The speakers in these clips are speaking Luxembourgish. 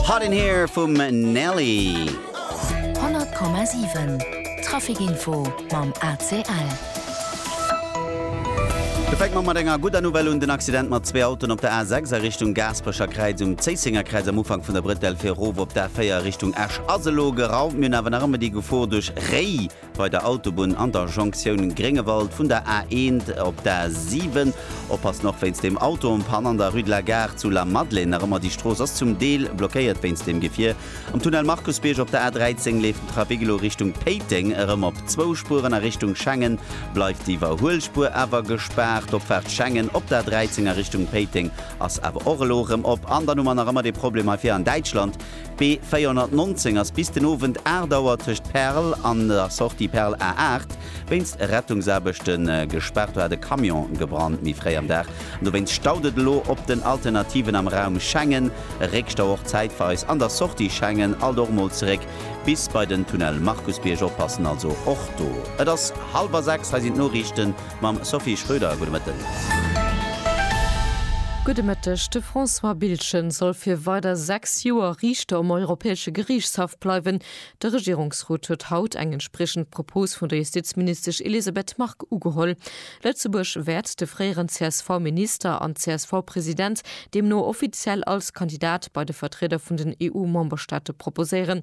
Hot in Here vum Nelly. 100,7 Trafic Info mam ACL. Da fänke mer mat enger gudder Nouvelle un. Den Accident mat zwee Autoen op der A6 a Richtung Gaasperecherkräiz, um Zéisséngerkräiz am Ufank vun der Brëtell fir erof op d'A4 a Richtung Esch ass elo geraumt. Mir hunn awer nach ëmmer déi Gefor duerch Réi. Bei der Autobunn an der Jonktioun Gréngewald vun der A 1 op d'A 7. Oppassen och wéinst dem Autopann an der Rue de la Gare zu Lamadelaine. Nach ëmmer déi Strooss ass zum Deel blockéiert wéinst dem Gefier. Am Tunnel Markusbierg op der A 13 leeft den Trafic elo Richtung Péiteng erëm op zwou Spueren. A Richtung Schengen bleift d'Iwwerhuelspuer awer gespaart. D'Opfaart Schengen op der A 13 a Richtung Péiteng ass awer och elo erëm op. An dann hu mer nach ëmmer dee Problem hei vir an Däitschland. B419 ass bis den Owend 8 Auer tëscht Perl an der Sortie Perl A8 wéinst Rettungsaarbechte gespaart. Do hat e Camion gebrannt méi fréi am Dag an dowéinst staut et elo op den Alternativen am Raum Schengen. E Réckstau och zäitweis an der Sortie Schengen. Alt och mol zeréck bis bei den Tunnel Markusbierg. Oppassen also och do. Et ass hallwer 6, hei sinn d'Noriichten. Mam Sophie Schröder, gudde Mëtten. Gudde Mëtteg. De François Biltgen soll fir weider sechs Joer Riichter um Europäesche Geriichtshaff bleiwen. De Regierungsrot huet haut eng entspriechend Propos vun der Justizministesch Elisabeth Margue ugeholl. Lëtzebuerg wäert de fréieren CSV-Minister an CSV-President deemno offiziell als Kandidat bei de Vertrieder vun den EU-Memberstaate proposéieren.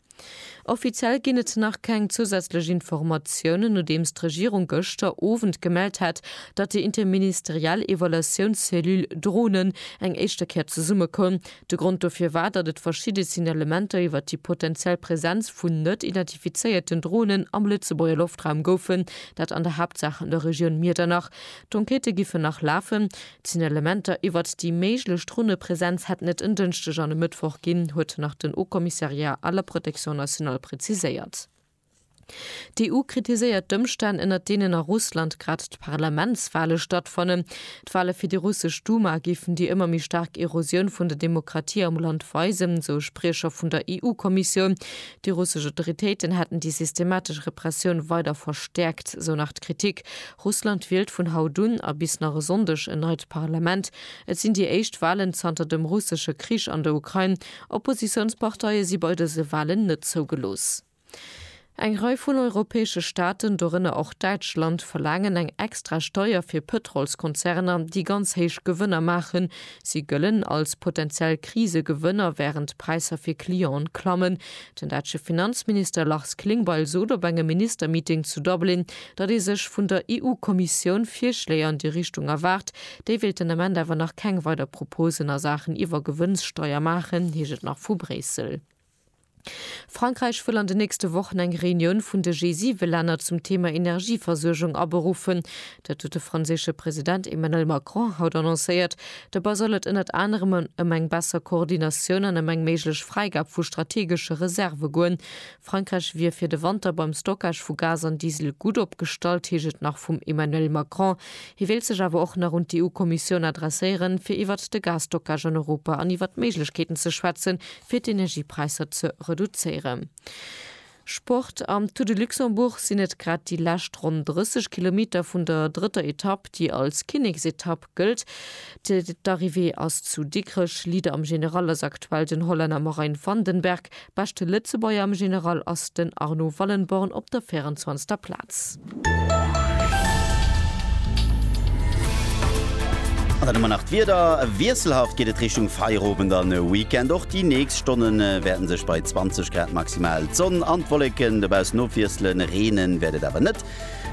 Offiziell ginn et nach keng zousätzlech Informatiounen, nodeems d'Regierung gëschter Owend gemellt hat, datt déi interministeriell Evaluatiounscellule Dronen eng éischter Kéier zesummekoum. De Grond dofir war, datt et verschidde Signalementer iwwer déi potenziell Presenz vun net identifizéierten Dronen am Lëtzebuerger Loftraum goufen, dat an der Haaptsaach an der Regioun Miedernach. D'Enquêtë giffen nach lafen. D'Signalementer iwwert déi méiglech Dronepresenz hätten et en Dënschdeg an e Mëttwoch ginn, huet nach den Haut Commissariat à la protection nationale preziséiert. D'EU kritiséiert d'Ëmstänn, ënner deenen a Russland grad d'Parlamentswale stattfannen. D'Wale fir déi russesch Duma géifen déi ëmmer méi staark Erosioun vun der Demokratie am Land weisen, esou e Spriecher vun der EU-Kommissioun. Déi russesch Autoritéiten hätten déi systematesch Repressioun weider verstäerkt, esou nach d'Kritik Russland wielt vun haut un a bis nach e Sonndeg en neit Parlament. Et sinn déi éischt Walen zanter dem russesche Krich an der Ukrain. Oppositiounsparteie si bei dëse Walen net zougelooss. Eng Rei vun europäesche Staaten, dorënner och Däitschland, verlaangen eng extra Steier fir Pëtrolskonzerner, déi ganz héich Gewënner maachen. Si gëllen als potenziell Krisegewënner, wärend d'Präisser fir Clienten klammen. Den dätsche Finanzminister Lars Klingbeil sot op engem Ministermeeting zu Dublin, datt ee sech vun der EU-Kommissioun Virschléi an déi Richtung erwaart. Déi wéilt den Ament awer nach keng weider Proposen a Saachen Iwwergewënnssteier maachen, heescht et nach vu Bréissel. Frankräich wëll an den nächste Wochen eng Reunioun vun de G7-Länner zum Thema Energieversuergung aberuffen. Dat huet de franséische President Emmanuel Macron haut annoncéiert. Dobäi soll et ënnert anerem ëm eng besser Koordinatioun an ëm eng méiglech Fräigab vu strategesche Reserve goen. Frankräich wier fir de Wanter beim Stockage vu Gas an Diesel gutt opgestallt, heescht et nach vum Emmanuel Macron. Hie wéilt sech awer och nach un d'EU-Kommissioun adresséieren, fir iwwert de Gasstockage an Europa an iwwert d'Méiglechkeeten ze schwätzen, fir d'Energiepräisser ze reduzéieren. Sport, Am Tour de Luxembourg sinn et grad déi lescht ronn 30 Kilometer vun der drëtter Etapp, déi als Kinneksetapp gëllt. D'Arrivée ass zu Dikrech. Leader am General ass aktuell den Hollänner Marijn van den Berg. Beschte Lëtzebuerger am General ass den Arno Wallenborn op der 24. Plaz. An dann hu mer nach d'Wieder. Wiesselhaft geet et Richtung Feierowend an Weekend. Och déi nächst Stonne wäerte sech bei 20 Grad maximal d'Sonn an d'Wolleken dobaussen ofwiesselen. Reene wäert et awer net.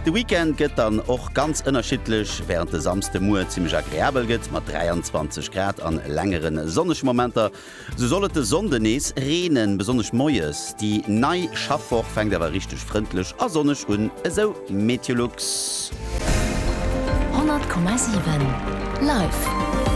De Weekend gëtt dann och ganz ënnerschiddlech, wärend de Samsdemuer zimmlech agreabel gëtt mat 23 Grad a längere sonnege Momenter. Sou soll et de Sonnde nees reenen, besonnesch moies. Déi nei Schaffwoch fänkt awer richteg frëndlech a sonneg un, esou Meteolux. 100,7 Live!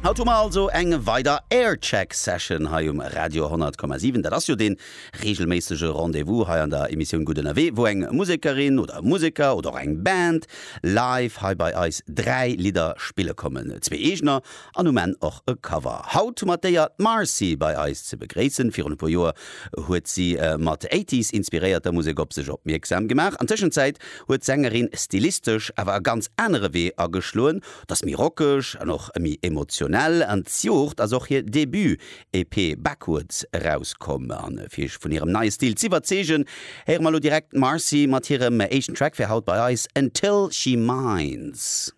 Haut hu mer also eng weider Aircheck Session hei um Radio 100,7. Dat ass jo dee reegelméissege Rendez-vous hei an der Emissioun Gutt Ënnerwee, wou eng Musekerin oder e Museker oder och eng Band live hei bei eis dräi Lidder spille kommen. Zwee eegener An um Enn och e Cover. Haut hu mer d'Éier d'Marcy bei eis ze begréissen. Virun e puer Joer huet si mat Eighties inspiréierter Musek op sech opmierksam gemaach. An Tëschenzäit huet d'Sängerin stilistesch awer e ganz anere Wee ageschloen. T'ass méi rockeg an och méi emotionell. An d'Joert ass och hir Debut-EP Backwards erauskomm. A fir iech vun hirem neie Stil z'iwwerzeegen, héiere mer elo direkt d'Marcy mat hirem éischten Track fir haut bei eis, Until She Minds.